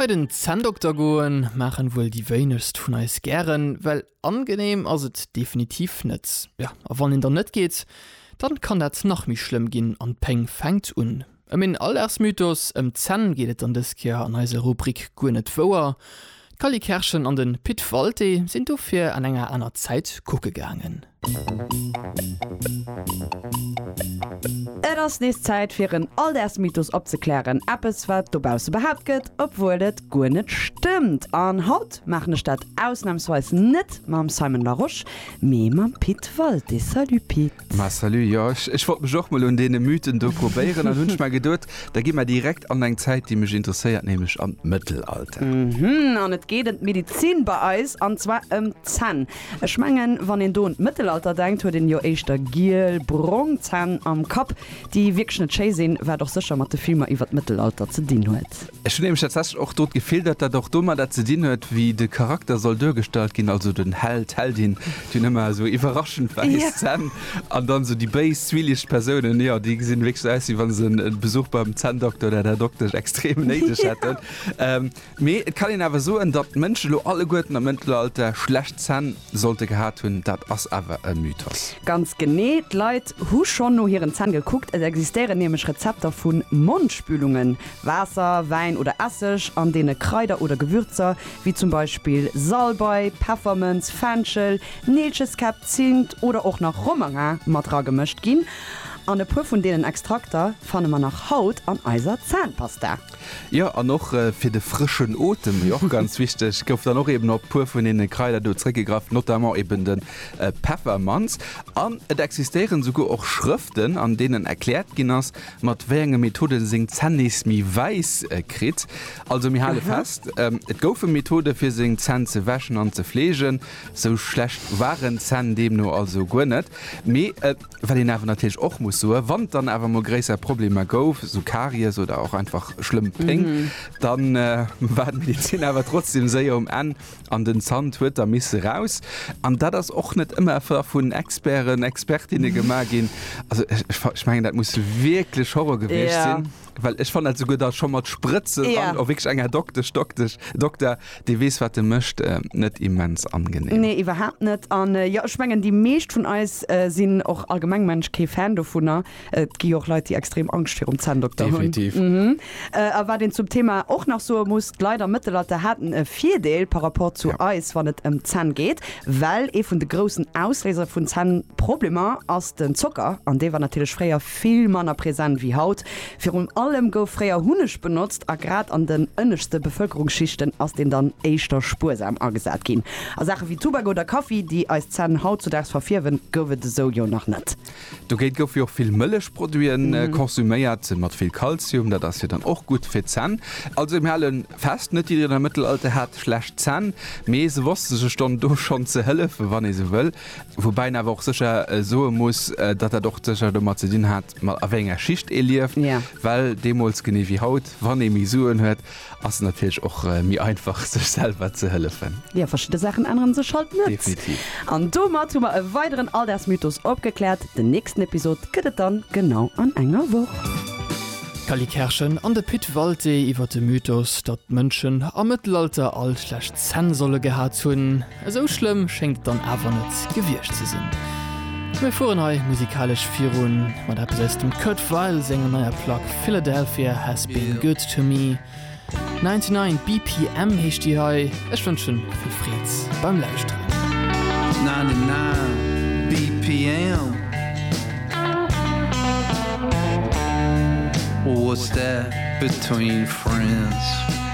Bei den Zänndokter goen maachen wuel déi wéinegst vun eis gären, well angeneem ass et definitiv net. Jo, a wann een dann net geet, dann kann dat nach méi schlëmm ginn an d'Péng fänkt un. Ëm een Alldagsmythos ëm d'Zänn geet et dann dës Kéier an eiser Rubrik Guer net wouer. D'Cally Kerschen an den Pit Walté sinn dofir an enger aner Zäit kucke gaangen. Et ass nees Zäit fir en Alldagsmythos opzeklären, eppes wat dobausse behaapt gëtt, obwuel et guer net stëmmt. An haut maachen ech dat ausnamsweis net mam Simon Larosche, mee mam Pit Walté. Salut Pit! Ma salut, jo ech wollt mech och mol un deene Mythen do probéieren an hunn ech mer geduet, da gi mer direkt an eng Zäit déi mech interesséiert, nämlech an d'Mëttelalter. Mhm, an et geet em d'Medizin bei eis, an zwar em d'Zänn. Ech mengen wann een do un d'Mëttelalter denkt, huet een jo éischter giel, brong Zänn am Kapp, déi wierklech net schéi sinn, wat och sécher mat de Filmer iwwer d'Mëttelalter ze dinn huet. Ech hunn nämlech tatsächlech och do d'Gefill, datt dat och domadder ze dinn huet, wéi de Charakter soll duergestallt ginn, also den Held, d'Heldin, déi hunn ëmmer esou iwwerraschend wäiss Zänn an dann esou déi béis, zwielicht Persounen, jo, déi gesinn wierklech esou aus, wéi wa se e Besuch beim Zänndokter oder der Doktesch extrem néideg hätten. Mee et kann een awer soen, datt d'Mënschen elo alleguerten am Mëttelalter schlecht Zänn. Sollte gehat hunn, dat ass awer e Mythos. Ganz genee, d'Leit hu schonn no hiren Zänn gekuckt. Et existéieren nämlech Rezepter vu Mondspülungen, Waasser, Wäin oder Esseg, an deene Kraider oder Gewürzer wéi zum Beispill Salbei, Peffermënz, Fenchel, Neelcheskäpp, Zimt oder och nach Romarin mat ragemëscht ginn. An e puer vun deenen Extrakter fanne mer nach haut an eiser Zännpasta. Jo an och fir de frëschen Otem, déi och ganz wichteg, gouf dann och eben op puer vun deene Kraider do zréckgegraff, notamment eben de Peffermanz. An et existéieren esouguer och Schrëften, an deenen erkläert ginn ass, mat wéi enge Methode en seng Zänn nees méi wäiss kritt. Also mir hale fest, et goufe Methode fir seng Zänn ze wäschen an ze fleegen. Sou schlecht waren d'Zänn deemno also guer net. Mee. Wat een awer natierlech och muss soen, wann et dann awer emol gréisser Problemer gouf, esou Karies oder och einfach schlëmm Péng, da war d'Medezin awer trotzdeem séier um Enn an den Zant huet da misse raus. An dat ass och net ëmmer effer vun Experten, Expertinne gemaach ginn. Also ech mengen, dat muss wierklech Horror gewiescht sinn. Well ech fannen dat souguer da scho mat Sprëtzen Ja. an och wierklech eng Här Doktesch, Doktesch, Dokter, dee weess, wat e mécht, äh, net immens angenehm. Nee, iwwerhaapt net. An jo, ech mengen, déi meescht vun eis sinn och allgemeng, mengen ech, kee Fan dovunner. Et gi jo och Leit, déi extrem Angscht virum Zänndokter hunn. Definitiv. Mhm. A wat een zum Thema och nach soe muss, d'Leit am Mëttelalter haten e Virdeel par rapport zu eis, wann et ëm d'Zänn geet, well ee vun de groussen Ausléiser vun Zännproblemer ass den Zocker, an dee war natierlech fréier. vill manner present wéi haut. Virun allem gouf fréier Hunneg benotzt a grad an den ënneschte Bevëlkerungsschichten ass deen dann éischter spuersam agesat ginn. A Saache wéi Tubak oder Kaffi, déi eis Zänn hautzudaags verfierwen, gouf et esou jo nach net. Dogéint goufe jo och vill Mëllechproduite konsuméiert, mat vill Kalzium, dat ass jo dann och gutt fir d'Zänn. Also mir hale fest, net jiddereen am Mëttelalter hat schlecht Zänn, mee se wosste sech dann do schonn ze hëllefen, wann ee sou wëll. Woubäi een awer och sécher soe muss, datt dat och sécher domat ze dinn hat, mat a wéi enger Schicht ee lieft. Well deemools, genee wéi haut, wann ee méi Suen huet, ass et natierlech och méi einfach, sech selwer ze hëllefen. Jo, verschidde Saachen ännere sech halt net. Definitiv. An domat hu mer e weideren Alldagsmythos opgekläert. Den nächsten Episod gëtt et dann genau an enger Woch. D'Cally Kerschen an de Pit Walté iwwer de Mythos, datt d'Mënschen am Mëttelalter all schlecht Zänn solle gehat hunn. Esou schlëmm schéngt et dann awer net gewiescht ze sinn. Mir fueren hei musikalesch virun mat eppes aus dem Kurt Weill senger neier Plack Philadelphia Has Been Good To Me. 99 BPM heescht déi hei. Ech wënschen vill Freed beim Lauschteren. 99 BPM What's that between friends?